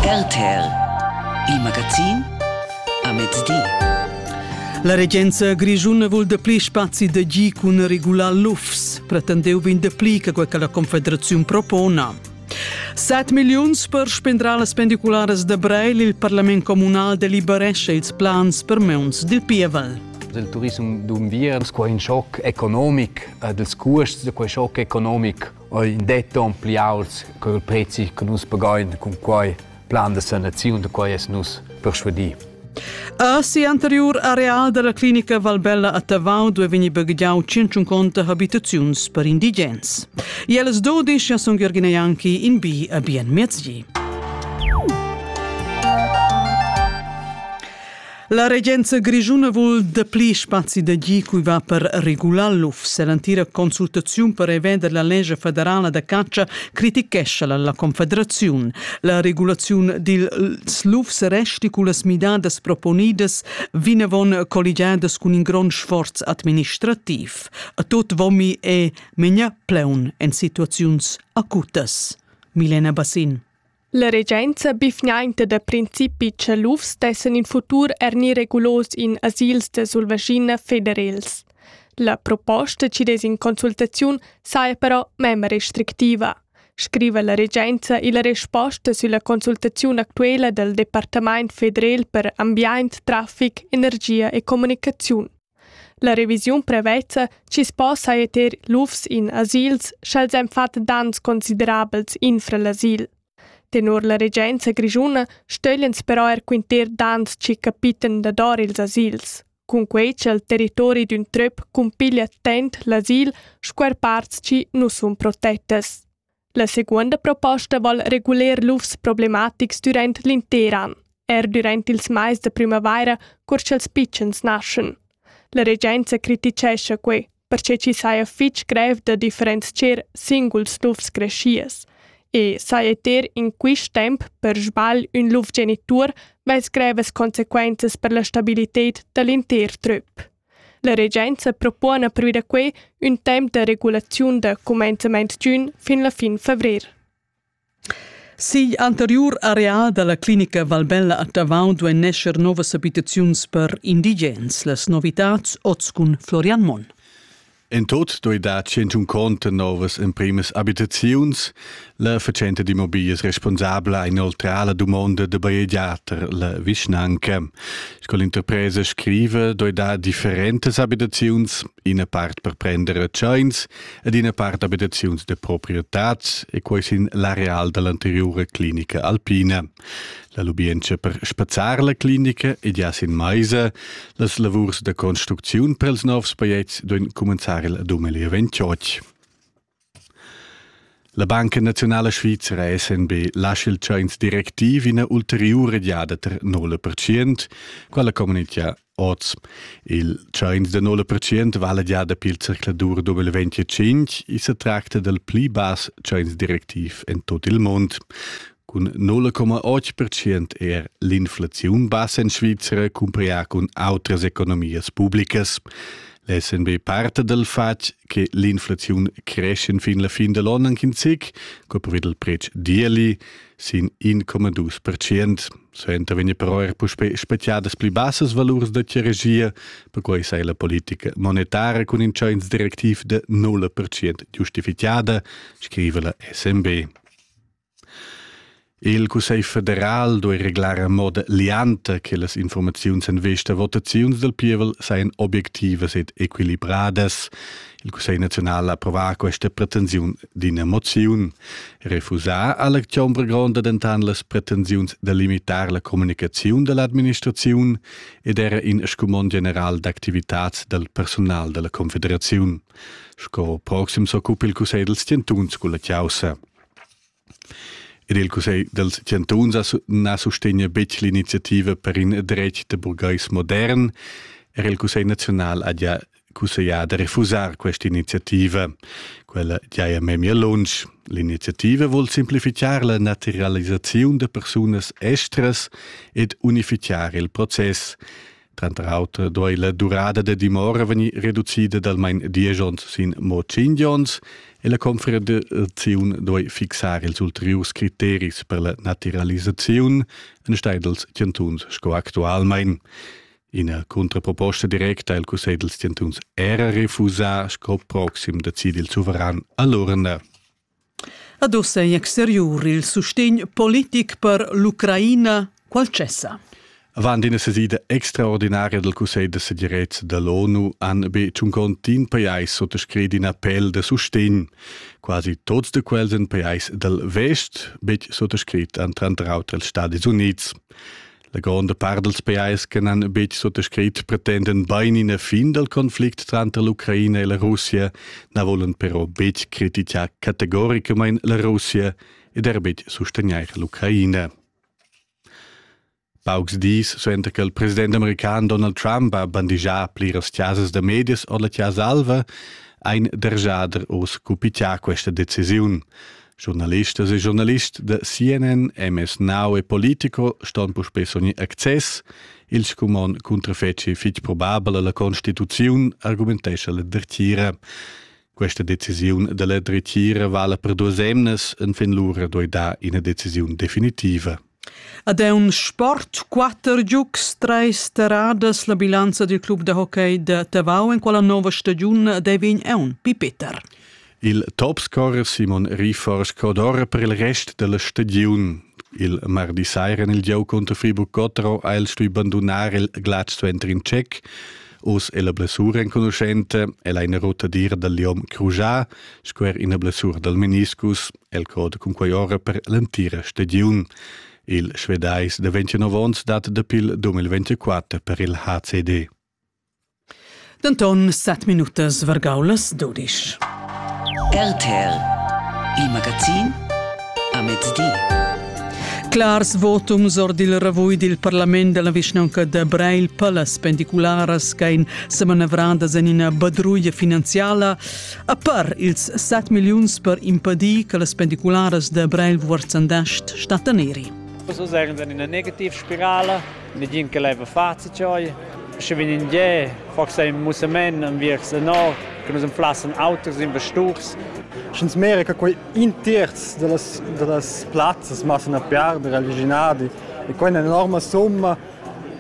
RTL Il magazin a mezdi. La regenza grischuna vul dapli spazi da gi cun regular lufs. Pretendeu vegn dapli che quel che la Confederaziun propona. 7 milliuns per spendrar las pendicularas da Breil. Il parlament comunal deliberesce ils plans per meuns dil pievel. Il turism d'Umviern, quai in schoc economic, äh, dels cuosts, quai schoc economic Oi in det on pli auts co il prezi che nus pagain cun quai plan da sanaziun da quai es nus persuadì. A si anterior areal della clinica Valbella a Tavau dove vegni baghiau 150 habitaziuns per indigens. Jeles 12 sun Jürgen Janki in bi a bien mezgi. La regenza grischuna vul dapli spazi da gi cui va per regular l'UFS e l'antira consultaziun per revender la legge federala da caccia critichescha la, la Confederaziun. La regulaziun dils LUFS resti cu las midadas proponidas vinavon colligiadas cun in grond sforz administrativ. A tot vomi e menia pleun en situaziuns acutas. Milena Bassin. La regenza bifgnainta da principi Tschalufs dessan in futur er ni regulos in asils da Sulvaschina federels. La proposta ci des in consultaziun saja però mem restrictiva, scriva la regenza e la resposta sulla consultaziun actuela dal Departament federal per ambient, traffic, energia e comunicaziun. La revisiun prevezza chi's po saja ter lufs in asils, sch'els han fat daners considerabels infra l'asil. Tenor la regenza grischuna stöglians però eir quinter daners chi capitan dador ils asils. Cunquei cha il territori d'ün tröp cumpiglia attent l'asil sco eir parts chi nu sun protettas. La seguonda proposta val reguler lufs problematics dürant l'inter an, eir dürant ils mais da prümavaira, cur cha'ls pitschens naschan. La regenza critichescha quai, perche chi saja fich grev da differenzier singuls lufs creschias e saja ter in quist temp per sbagl ün luf genitur vess grevas consequenzas per la stabilited da l'inter trüp. La regenza propona pervi da quei ün temps da regulaziun da cumenzament d'ün fin la fin favrer. Sigl anteriur area dalla clinica Valbella a Tavau duein nescher novas abitaziuns per indigens. Las novitats oz cun Florian Monn. En tot doi dar tschintun conto novas emprimas abitaziuns, la fatschenta d'immobilias responsabla inoltra la dumonda de bajegiater la vischnanca. Sco l'interpresa scrive, doi dar differentas abitaziuns, ina part per prender retscheins ed ina part abitaziuns de proprietad, e quei sin l'areal dell'anteriura clinica alpina. La lubientscha per spazzar la clinica ed ja sin maisa, las lavurs da construcziun pels novs pajets duin cumenzar il dumeli ventioch. La Banca Nazionala Svizra SNB lascia il tschains directiv ina ulteriura giada ter 0%, quella communitgia Oz. Il tschains da 0% vala già dapi il circladur W25 e se tracta dal pli bass tschains directiv en tot il mund. Cun 0,8% er l'inflaziun bassa en Svizra cumparià cun autras economias publicas. L'SNB parta dal fatg che l'inflaziun creschen fin la fin da l'on anche in zic, co previd il pretsch d'ieli, sin 1,2%. Suenter vegn però er puspè speziadas pli bassas valurs da regia, perquai sei la politica monetara cun in tschains directiv de 0% giustifichada, scriva la SMB. Il Cussegl federal doi reglar a moda lianta che las informaziuns en vista votaziuns del pievel seien objectivas ed equilibradas. Il Cussegl naziunal approvà questa pretensiun d'ina moziun. Refusà ha l'acziun per gronda dentan las pretensiuns da limitar la communicaziun dall'administraziun ed era in scumond general d'activitads dal personal dalla Confederaziun. Sco proxim s'occupa il Cussegl dals chantuns culla caussa. Ed il Cussegl dals chantuns na sustegna betg l'iniziativa per in dretg da burgais modern. Era il Cussegl naziunal ha già cusseglià da refusar questa iniziativa. Quella giaja memia lunsch. L'iniziativa vul simplificar la naturalisaziun da persunas estras ed unificar il process. Tranter auter doi la durada da dimora vegnir reducida dal main diesch onns sin mo tschinch onns e la confederaziun doi fixar ils ulteriurs criteris per la naturalisaziun enstagl dals chantuns sco actualmain. Ina contraproposta directa il Cussegl dels Chantuns era refusà sco proxim decid il suveran all'urna. Ad ussa in exteriur il sustegn politic per l'Ucraina qual cessa? Avant ina sesida extraordinaria del Cussegl de segirezza dell'ONU han be tschun contin pajais sottoscrit in appell de sustegn. Quasi tots de quels en pajais del Vest, betg sottoscrit an tranter auter els Stati Units. La gronda part dals pajais che n'han betg suttascrit pretenden bain ina fin dal conflict tranter l'Ucraina e la Russia, na volan però betg critichar categoricamain la Russia ed er betg sustegnair l'Ucraina. Paucs dis suenter che il president american Donald Trump ha bandigià pliras chasas da medias or la Chasa Alva, ha in dergiader oz cupichià questa decisiun. Journalistas e journalist de CNN, MS Now e politico ston puspé sogni access. Il scumon cuntrafeci fitg probabel alla Constituziun, argumentescha la dretgira. Questa decisiun della dretgira vala per duas emnas, en fin lura doi da ina decisiun definitiva. Ad aun sport quatter giugs, treis terradas, la bilanza dil club da hockey da Tavau en quella nova stagiun dei vegn aun pipeter. Il topscorer Simon Rifor scodora per il rest della stagiun. Il mardi sera nel giau contro Friburg Cottro ha el stui bandonar il Glatsch Center in Tschec. Us è la blessura enconuschente e la in rotadir dal Liom Crujá, squer ina blessura dal meniscus. el code cun quei ora per l'entira stagiun. Il Svedais de 29 ons dat dapi il 2024 per il HCD. Denton 7 minutas vargaulas dudisch. RTL Il magazin a mezdi. Clars votums or dil ravui dil parlament della vischnaunca de Breil per las pendicularas ch'ein semanavradas en ina badruia finanziala A per ils 7 milliuns per impedir che las pendicularas da Breil Wurzendast stattan eri. So sagen dann in eine Negativspirale, nigin che leva face ciò. Sche vin in ge, forse im musemen am wirks no, che nus plassen autos in vesturs. Schens mere che quei in terz delle das plazzas massen a perdere agli ginadi e quei è un'enorme somma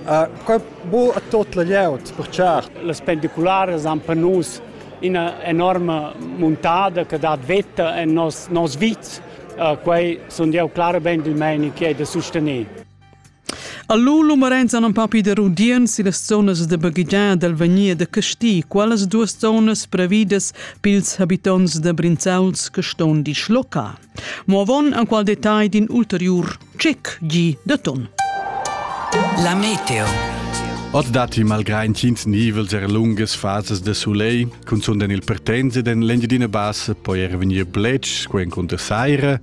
Uh, quai bo a tot la glieud, per certo. Las pendiculares han per nus ina enorma muntada che dat veta en nos, nos vit. Uh, quei sun jeu clarament il meini che è da sostener. Allo lo Marenz an papi de Rudien si las zonas de baghigià dal Vanier de Casti, qualas duas zonas previdas pils habitants de Brinzauls che ston di schloca. Mo avon an qual detagl d'in ulteriur Chic gi de ton. La meteo. Ot datti malgrà intgins nivels er lungas fasas de soleil, cunzunt en il Partense den l'Engiadina Bassa poi er vegnir bletsch, sco encunter saira.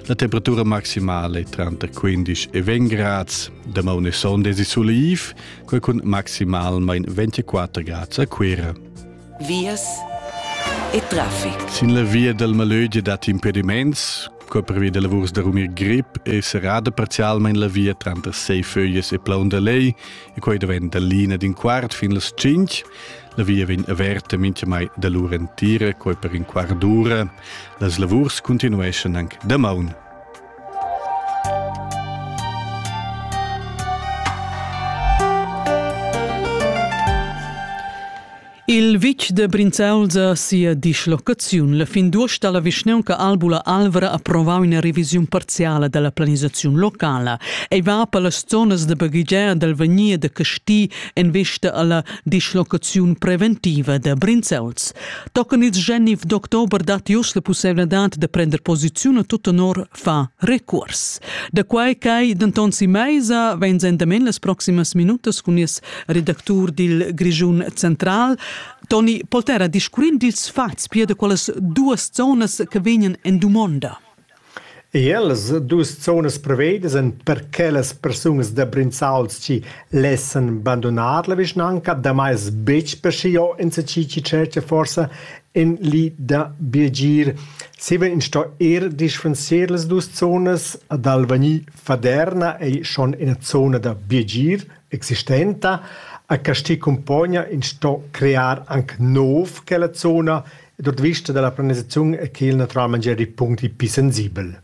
La temperatura maximale è tranter 15 e 20 grads. Damaun e sonda è soleiv, quel cun maximalmain 24 grads a Cuira. Vias e traffic. Sin la via dal Malögia datti impediments, Co preveda lavurs da rumir grip è serrada parzialmain la via tranter Seiföges e Plaun da Lei e quai daventa l'ina d'in quart fin las cinq. La via vegn averta mintgamai da lur entira, quai per in quart d'ura. Las lavurs continueschan anc damaun. Il vitg de Brinzauls sia dislocaziun. La fin d'uost ha la vischneunca Albula Alvra approvau ina revisiun parziala dalla planisaziun locala. Ei va per las zonas de baghegiar dal Vanier de Casti en vista alla dislocaziun preventiva de Brinzauls. Tochen ils Genf d'october dat jus la pusseivladad de prender posiziun a tut tenor fa recuors. Da quai ch'ei denton si meisa vegn endamen las proximas minutas cun nies redactur dil Grischun Central, Toni Poltera, discurrind dils fats pia da quellas duas zonas che vegnan en dumonda. Ellas dus zonas prevedas en per che las persunas da Brinzalschi lessen bandonar la vischnanca, damai betg per schiio in se ci Churchill forsa in li da Birgir. Ziemem sto era dispenser las dus zonas ad Alvagni Faderna ei schon ina zona da biagir existenta. A Casti Cumpogna ins sto crear anc nov quella zona ed ord vista dalla planisaziun è quel naturalmein gia in punct pli sensibel.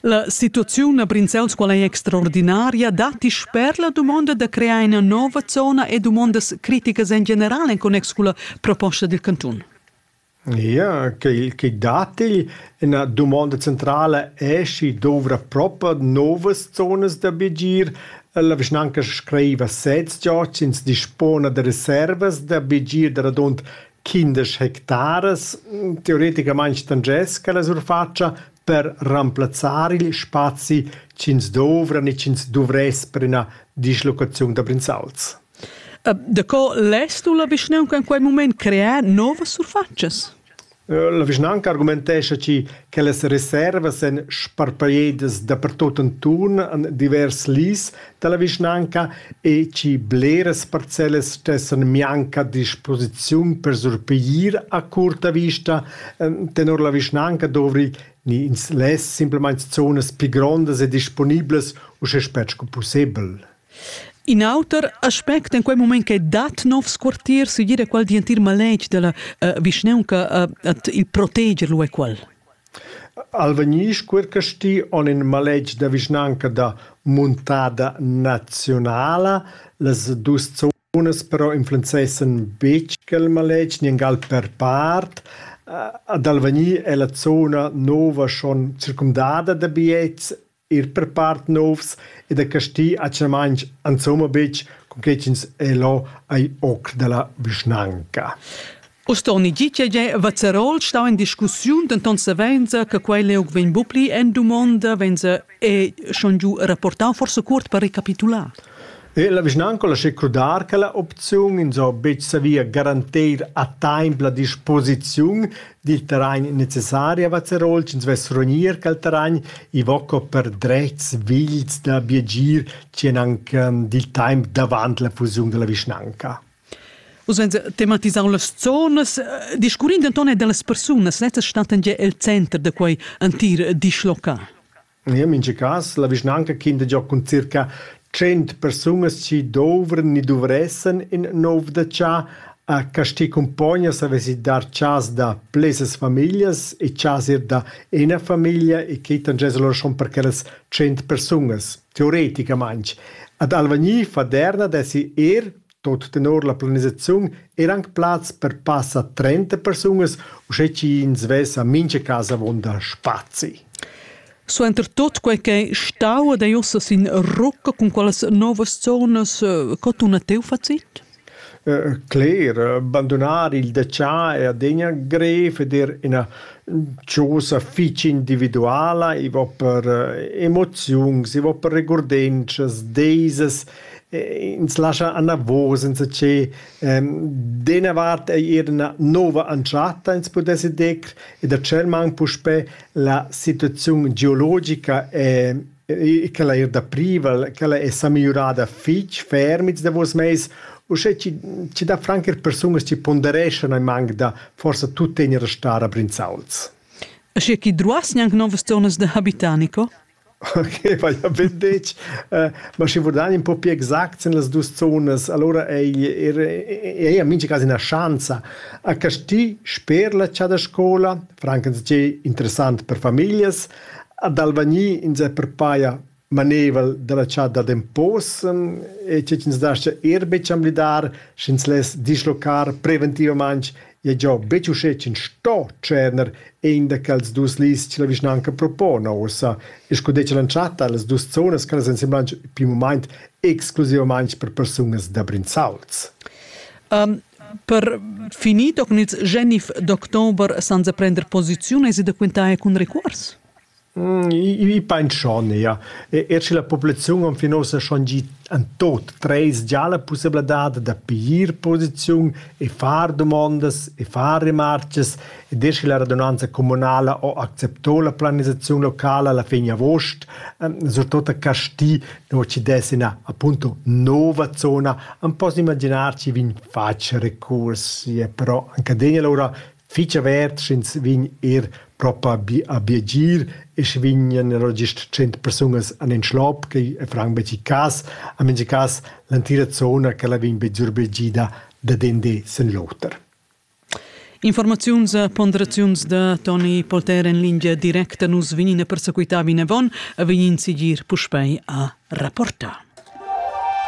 La situaziun a Brinzels qual ei extraordinaria datti sper la dumonda da crear ina nova zona e dumondas criticas en general en connex culla proposta dil cantun. Ia quei che dat igl ina dumonda centrala è sch'i dovra propa novas zonas da bigir. La vischnanca scriva sez gia ch'ins dispona da reservas da bigir da radund quindesch hectaras. Teoreticamain stangess quella surfatscha per remplazzar igl spazi ch'ins dovra ni ch'ins duvress per ina dislocaziun da Brinzauls. Da co less tu la vischnaunca en quei mument crear novas surfatschas? La vischnaunca argumentescha chi che las reservas en sparpagliedas dapertut antun an divers lis dalla vischnaunca e chi bleras parcellas stessan mianc a disposiziun per surpiglier a curta vista. Tenor la vischnaunca dovri ni ins less simplamain zonas pli grondas e disponiblas uschè spert sco pussebel. In auter aspect en quei mument che dat novs quartiers sigir è quel dientir maletg della uh, vischneunca uh, at il proteger lu è quel. Alvegnisch Quircasti on in maletg da vischnanca da muntada nazionala. Las dus zonas però influenzessen betg quel maletg, niengal per part. Ad Alvegni è la zona nova schon circumdada da biets Ir per part novs e da Casti atgnamaing insomma betg, cunquai ch'ins è là ai oc da la vischnanca. Ustorni di che è Vazerol stà in discussiun, denton savenza che quei leug vegn bupli en dumonda, venza è schon giu rapportau forse cuort per recapitular. Er la vischnanca lascha crudar che la opziun ins ho betg savia garantir a taimp la disposiziun dil terrain necessari a Vazerol ch'ins vess rognir quel terrain, i vo co per dretgs vigls da biagir ch'en anc dil taimp davant la fusiun della vischnanca. Uss vegn tematisau las zonas. Discurrind denton er dallas persunas, lezza stattan gia el center da quei entir dischlocal. In en mintga cas la vischnanca quinta giò cun circa tschient persunas chi douvran ni duvressan ün nouv dachà. A Casti cumpognas havess i dar chas da plesas famiglias e chas eir da üna famiglia e que tangess alura schon per quellas tschient persunas, teoreticamaing. Ad Alvagni, Faderna dessi eir Tot tenor la planisaziun eran aunc plazs per passa trenta persunas, uschè ch'ins vesa mintga casa avunda spazi. Suenter tot quei ch'ei stau ed ei ussa sin rucca cun quellas novas zonas, co tuna teu facit? Cler, bandunar il detschar è adina grev ed er ina chosa fitg individuala, i va per emoziuns, i va per regurdenschas, deisas, ins lascha anavos insatgé d'ena vart ei era ina nova entschatta ins pudesse dir e da tschel mang puspè la situaziun geologica è quella er da privel quella è sa migliurada fitg ferm ils davos mais uschè ci, ci da franc er persunas ci pondereschan ai mang da forsa tuttegna da star a Brinzauls. E sche chi druas gnanc novas zonas da habitar, Nico? Okay, vai ja be detg. ma schi vurdar ün po pü exact sin las duos zonas, alura ei er ei a mincha cas üna schanza. A Casti sper la chasa da scoula, francamente interessant per famiglias, ad Alvagni insè per paja maneivel da la chasa da Possen e che chi'ns dascha er be chamblidar, schi'ns less dislocar preventivamaing Ed jau betg uschè ch'ins sto tscherner in da quels dus lis che la vischnanca propona ussa e sco detg l'entschatta las dus zonas che las ensemblan pil mument exclusivamain per persunas da Brinzauls. Um, per finir toccan ils genif d'october senza prender posiziun, hai da quintar cun recuors? I pain schon eir. Eir sche la populaziun enfin uossa schon gi in tuot tres già la pussabladad da piglier posiziun e far dumondas e far remarchas ed eir sche la radunanza comunala ho accepto la planisaziun locala alla fin avuost, surtot a Casti, nu chi dess üna appunto nouva zona, am poss imaginar chi vegn fatg recurs. Però anc adegna lura fich avert sch'ins vegn eir propa a biagir e sche vegnan alura gist tschient persunas an in schlop che franc betg cas, a mincha cas l'entira zona ch'ella vegn be zurbegida dad in di sin l'oter. Informaziuns e ponderaziuns da Toni Polter en lingia directa. Nus vegnin a persequità vinavon, a vegnin sigir puspei a rapportar.